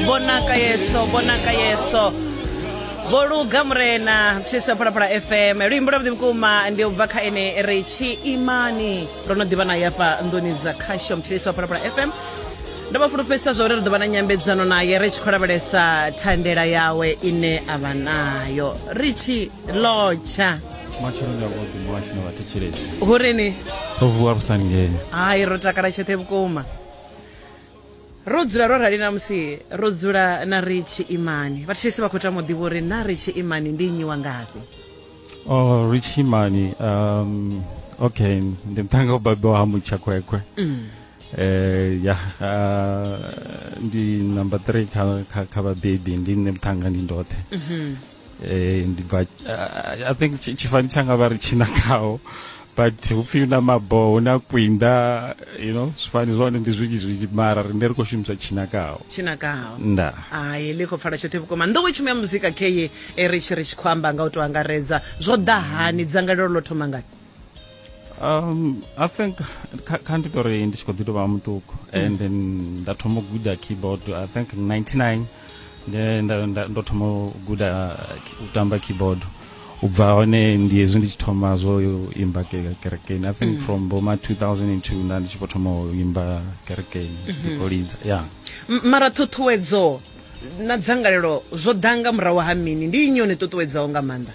bonaka yeso bonaka yeso vho luga murena thuso phalaphala fm luimbo lwa vhuḓi vhukuma ndi u bva kha ene ri tshi imani ro no ḓivha naye afha nḓuni dza khasho mthilisi wa phalaphala fm ndo vha fulufhedzisa zwa uri ri ḓo vha na nyambedzano naye ri tshi khou lavhelesa thandela yawe ine a vha nayo ri tshi lotsha matsheloni a vhuḓi muhasho na vhathetshelesi hu ri ni ro vuwa vhusangeni hai ro takala tshoṱhe vhukuma ro dzula ro rali na musi ro dzula na ri tshiimani vhathetshelesi vha khou tama u ḓivha uri na ri tshiimani ndi nnyi wa ngafhi o oh, ri tshiimani um okay ndi muṱhanga u babiwa ha mutshakhwekhwe mm. eh ya uh, ndi number 3 kha kha, kha vhabebi ndi nṋe muṱhanga ndi ndoṱhe mm -hmm. eh ndi bva I- i think tshi- tshifani tshanga vha ri tshina khaho but hupfi na maboho huna kwinda you know zwifani zwone ndi zwinzhi zwinzhi mara rine ri khou shumisa tshina khaho tshinakaho nda hayi ḽi khou pfala tshoṱhe vhukuma nḓowetshumo ya muzika keye e ri tshi ri tshi khou amba nga u tou angaredza zwo ḓa hani dzangalelo ḽo thoma ngani um i think kha ndi tori ndi tshi khou ḓi tovha muṱuku mm. and then nda thoma u guda keyboard i think 99 ndo thoma u guda u tamba keyboard u bva hone ndi hezwi ndi tshi thoma zwo imba kerekeni i think mm. from boma 2002 nda ndi tshi vho thoma u imba kerekeni mhm. ndi khou lidza ya mara ṱhuṱhuwedzo na dzangalelo zwo ḓa nga murahu ha mini ndi inyoni ṱuṱuwedzaho nga maanḓa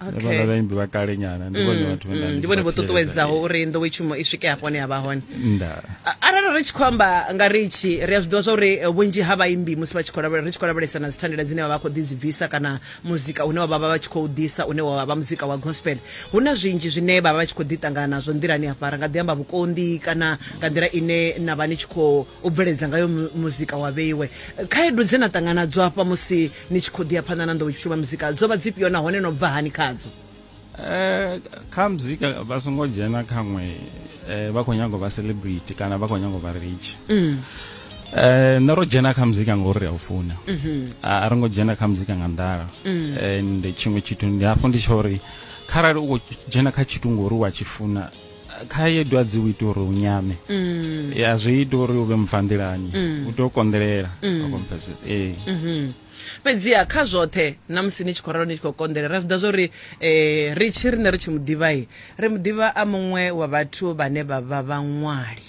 vhala vhaimbi vha kale nyana ndi vhone vhathu vhe mm, ndi vhone vho ṱuṱuwedzaho uri nḓowetshumo i swike hafho hone ya vha hone arali ri tshi khou amba nga ri tshi ri a zwi ḓivha zwa uri eh, vhunzhi ha vhaimbi musi vha tshi khou lavhelela ri tshi khou lavhelesa na dzithandela dzine vha vha khou ḓi dzi bvisa kana muzika une wa vha vha tshi khou ḓisa une wa vha muzika wa gospel hu na zwinzhi zwine vha vha vha tshi khou ḓi ṱangana nazwo nḓilani hafha ra nga ḓi amba vhukonḓi kana nga nḓila ine na vha ni tshi khou bveledza ngayo muzika wa vheiwe khaedu dze na ṱangana dzo hafha musi ni tshi khou ḓi ya phanḓa na nḓowetshutshu vha muzika dzo vha dzifhio nahone no bva hani khadzo eh, kha muzika vha songo dzhena khaṅwe eh, vha khou nyanga u vha celebrity kana vha khou nyanga u vha rich mm. Eh, nṋe ro dzhena kha muzika ngauri ri a u funa mhm. a ri ngo dzhena kha muzika nga nḓala mm. and tshiṅwe tshithu ndi hafho ndi tsha uri kharali u khou dzhena kha tshithu ngori wa tshi funa khaedwa dzi u ita uri u nyame mm. ya zwi ita uri u vhe mubvanḓilani mm. u tea u konḓelela mm. ee mm-hmm. fhedziha kha zwoṱhe na musi ni tshi khou ralo ni tshi khou konḓela ri zwiḓa zwori um ri tshi rine ri tshi muḓivhai ri muḓivha a muṅwe wa vhathu vhane vha vha vhaṅwali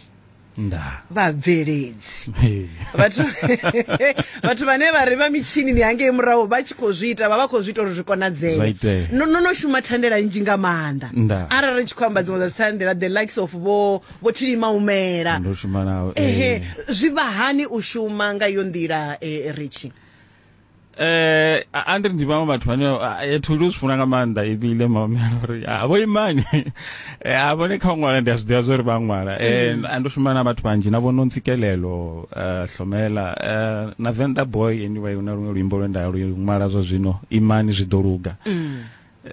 nda vhabveledzi vhathu vhathu vhane vha ri vha mitshini ni hangei murahu vha tshi khou zwi ita vha vha khou zwi ita uri zwi konadzee no no shuma thandela nnzhi nga maanḓa arali ri tshi khou amba dziṅwe dza thandela the likes of vho vho thilima umela ehe zwi vha hani u shuma nga iyo nḓila eh, ritshi eh a- andri ndi vhaṅwe vhathu vhane a- a- thu ndi u zwi funa nga maanḓa ibile mamela uri a vho imani Eh, a vhone kha u ṅwala ndi a zwi ḓivha zwa uri vha ṅwala Eh, a ndo shuma na vhathu vhanzhi na vhono ntsikelelo eh, hlomela eh, na venḓa boy anyway una luṅwe luimbo lwe nda lu ṅwala zwa zwino imani zwi ḓo luga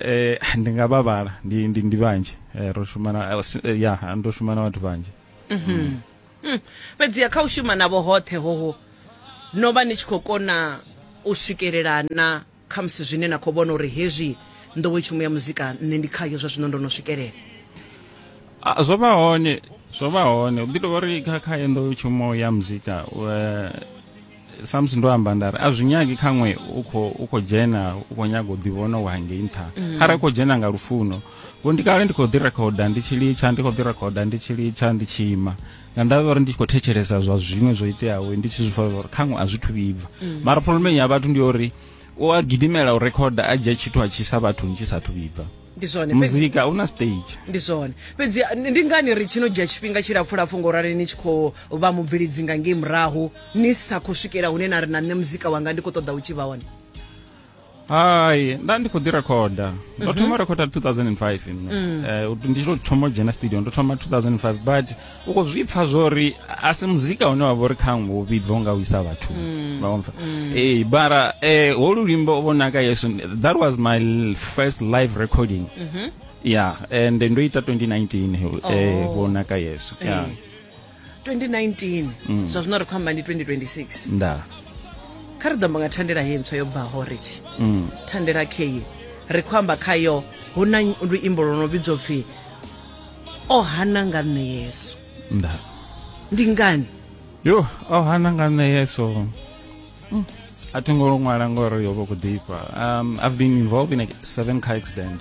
eh ndi nga vha vhala ndi ndi ndi vhanzhi Eh, ro shuma na eh, si- eh, ya ndo shuma na vhathu vhanzhi hmm. fhedziha kha u shuma navho hoṱhe hoho no vha ni tshi khou kona u swikelela na khamusi zwine na khou vhona uri hezwi nḓowetshumo ya muzika nṋe ndi khayo zwa zwino ndo no swikelela zwo vha hone zwo vha hone u ḓi tovha uri kha kha ye nḓowetshumo ya muzika samusi ndo amba nda ri a zwi nyagi khaṅwe u khou u khou dzhena u khou nyaga u ḓivhona wa hangei nṱha mm. kharali u khou dzhena nga lufuno vho ndi kale ndi khou ḓi rekhoda ndi tshi litsha ndi khou ḓi rekhoda ndi tshi litsha ndi tshi ima nga ndavha uri ndi tshi khou thetshelesa zwa zwiṅwe zwo iteaho ndi tshi zwi fa uri khaṅwe a zwi thu vhibva mm. mara pholomeni ya vhathu ndi uri u a gidimela u rekhoda a dzhia tshithu a tshi sa vhathu ni tshi sa thu vhibva ndi zwone muzika una stage ndi zwone fhedzi ndi ngani ri tshino dzhia tshifhinga tshilapfulapfu ngo rali ni tshi khou vha mubvhilidzi nga ngei murahu ni sa khou swikela hune na ri na nṋe muzika wanga ndi khou ṱoḓa u tshi vha hone hai nda ndi khou ḓi rekhoda ndo mhm. thoma rekhoda 2005 nṋe mm. eh, ndi tshi to thoma dzhena studio ndo thoma 2005 but u khou zwi pfa zwo ri a si muzika une wa vha uri khaṅwe wo vhibva nga u isa vhathu mm. vhaompfa mm. ee bara um holu luimbo vho naka yesu that was my first live recording mhm. yeah and ndo ita 2019 eh, oh. vho naka yesu yeah 2019 mm. zwa zwino ri khou amba ndi 2026 nda kha ri ḓo amba nga thandela he ntswa yo bvaho richi mm. thandela kheyi ri khou amba khayo hu na luimbo lwo no vhidzwa pfhi o hana nga nṋe yesu nda ndi ngani yo o hana nga nṋe yesu mm. a thi ngo ṅwala ngori yo vha khou ḓifha um, i've been involved in a seven car accident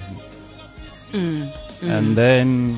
mm. and then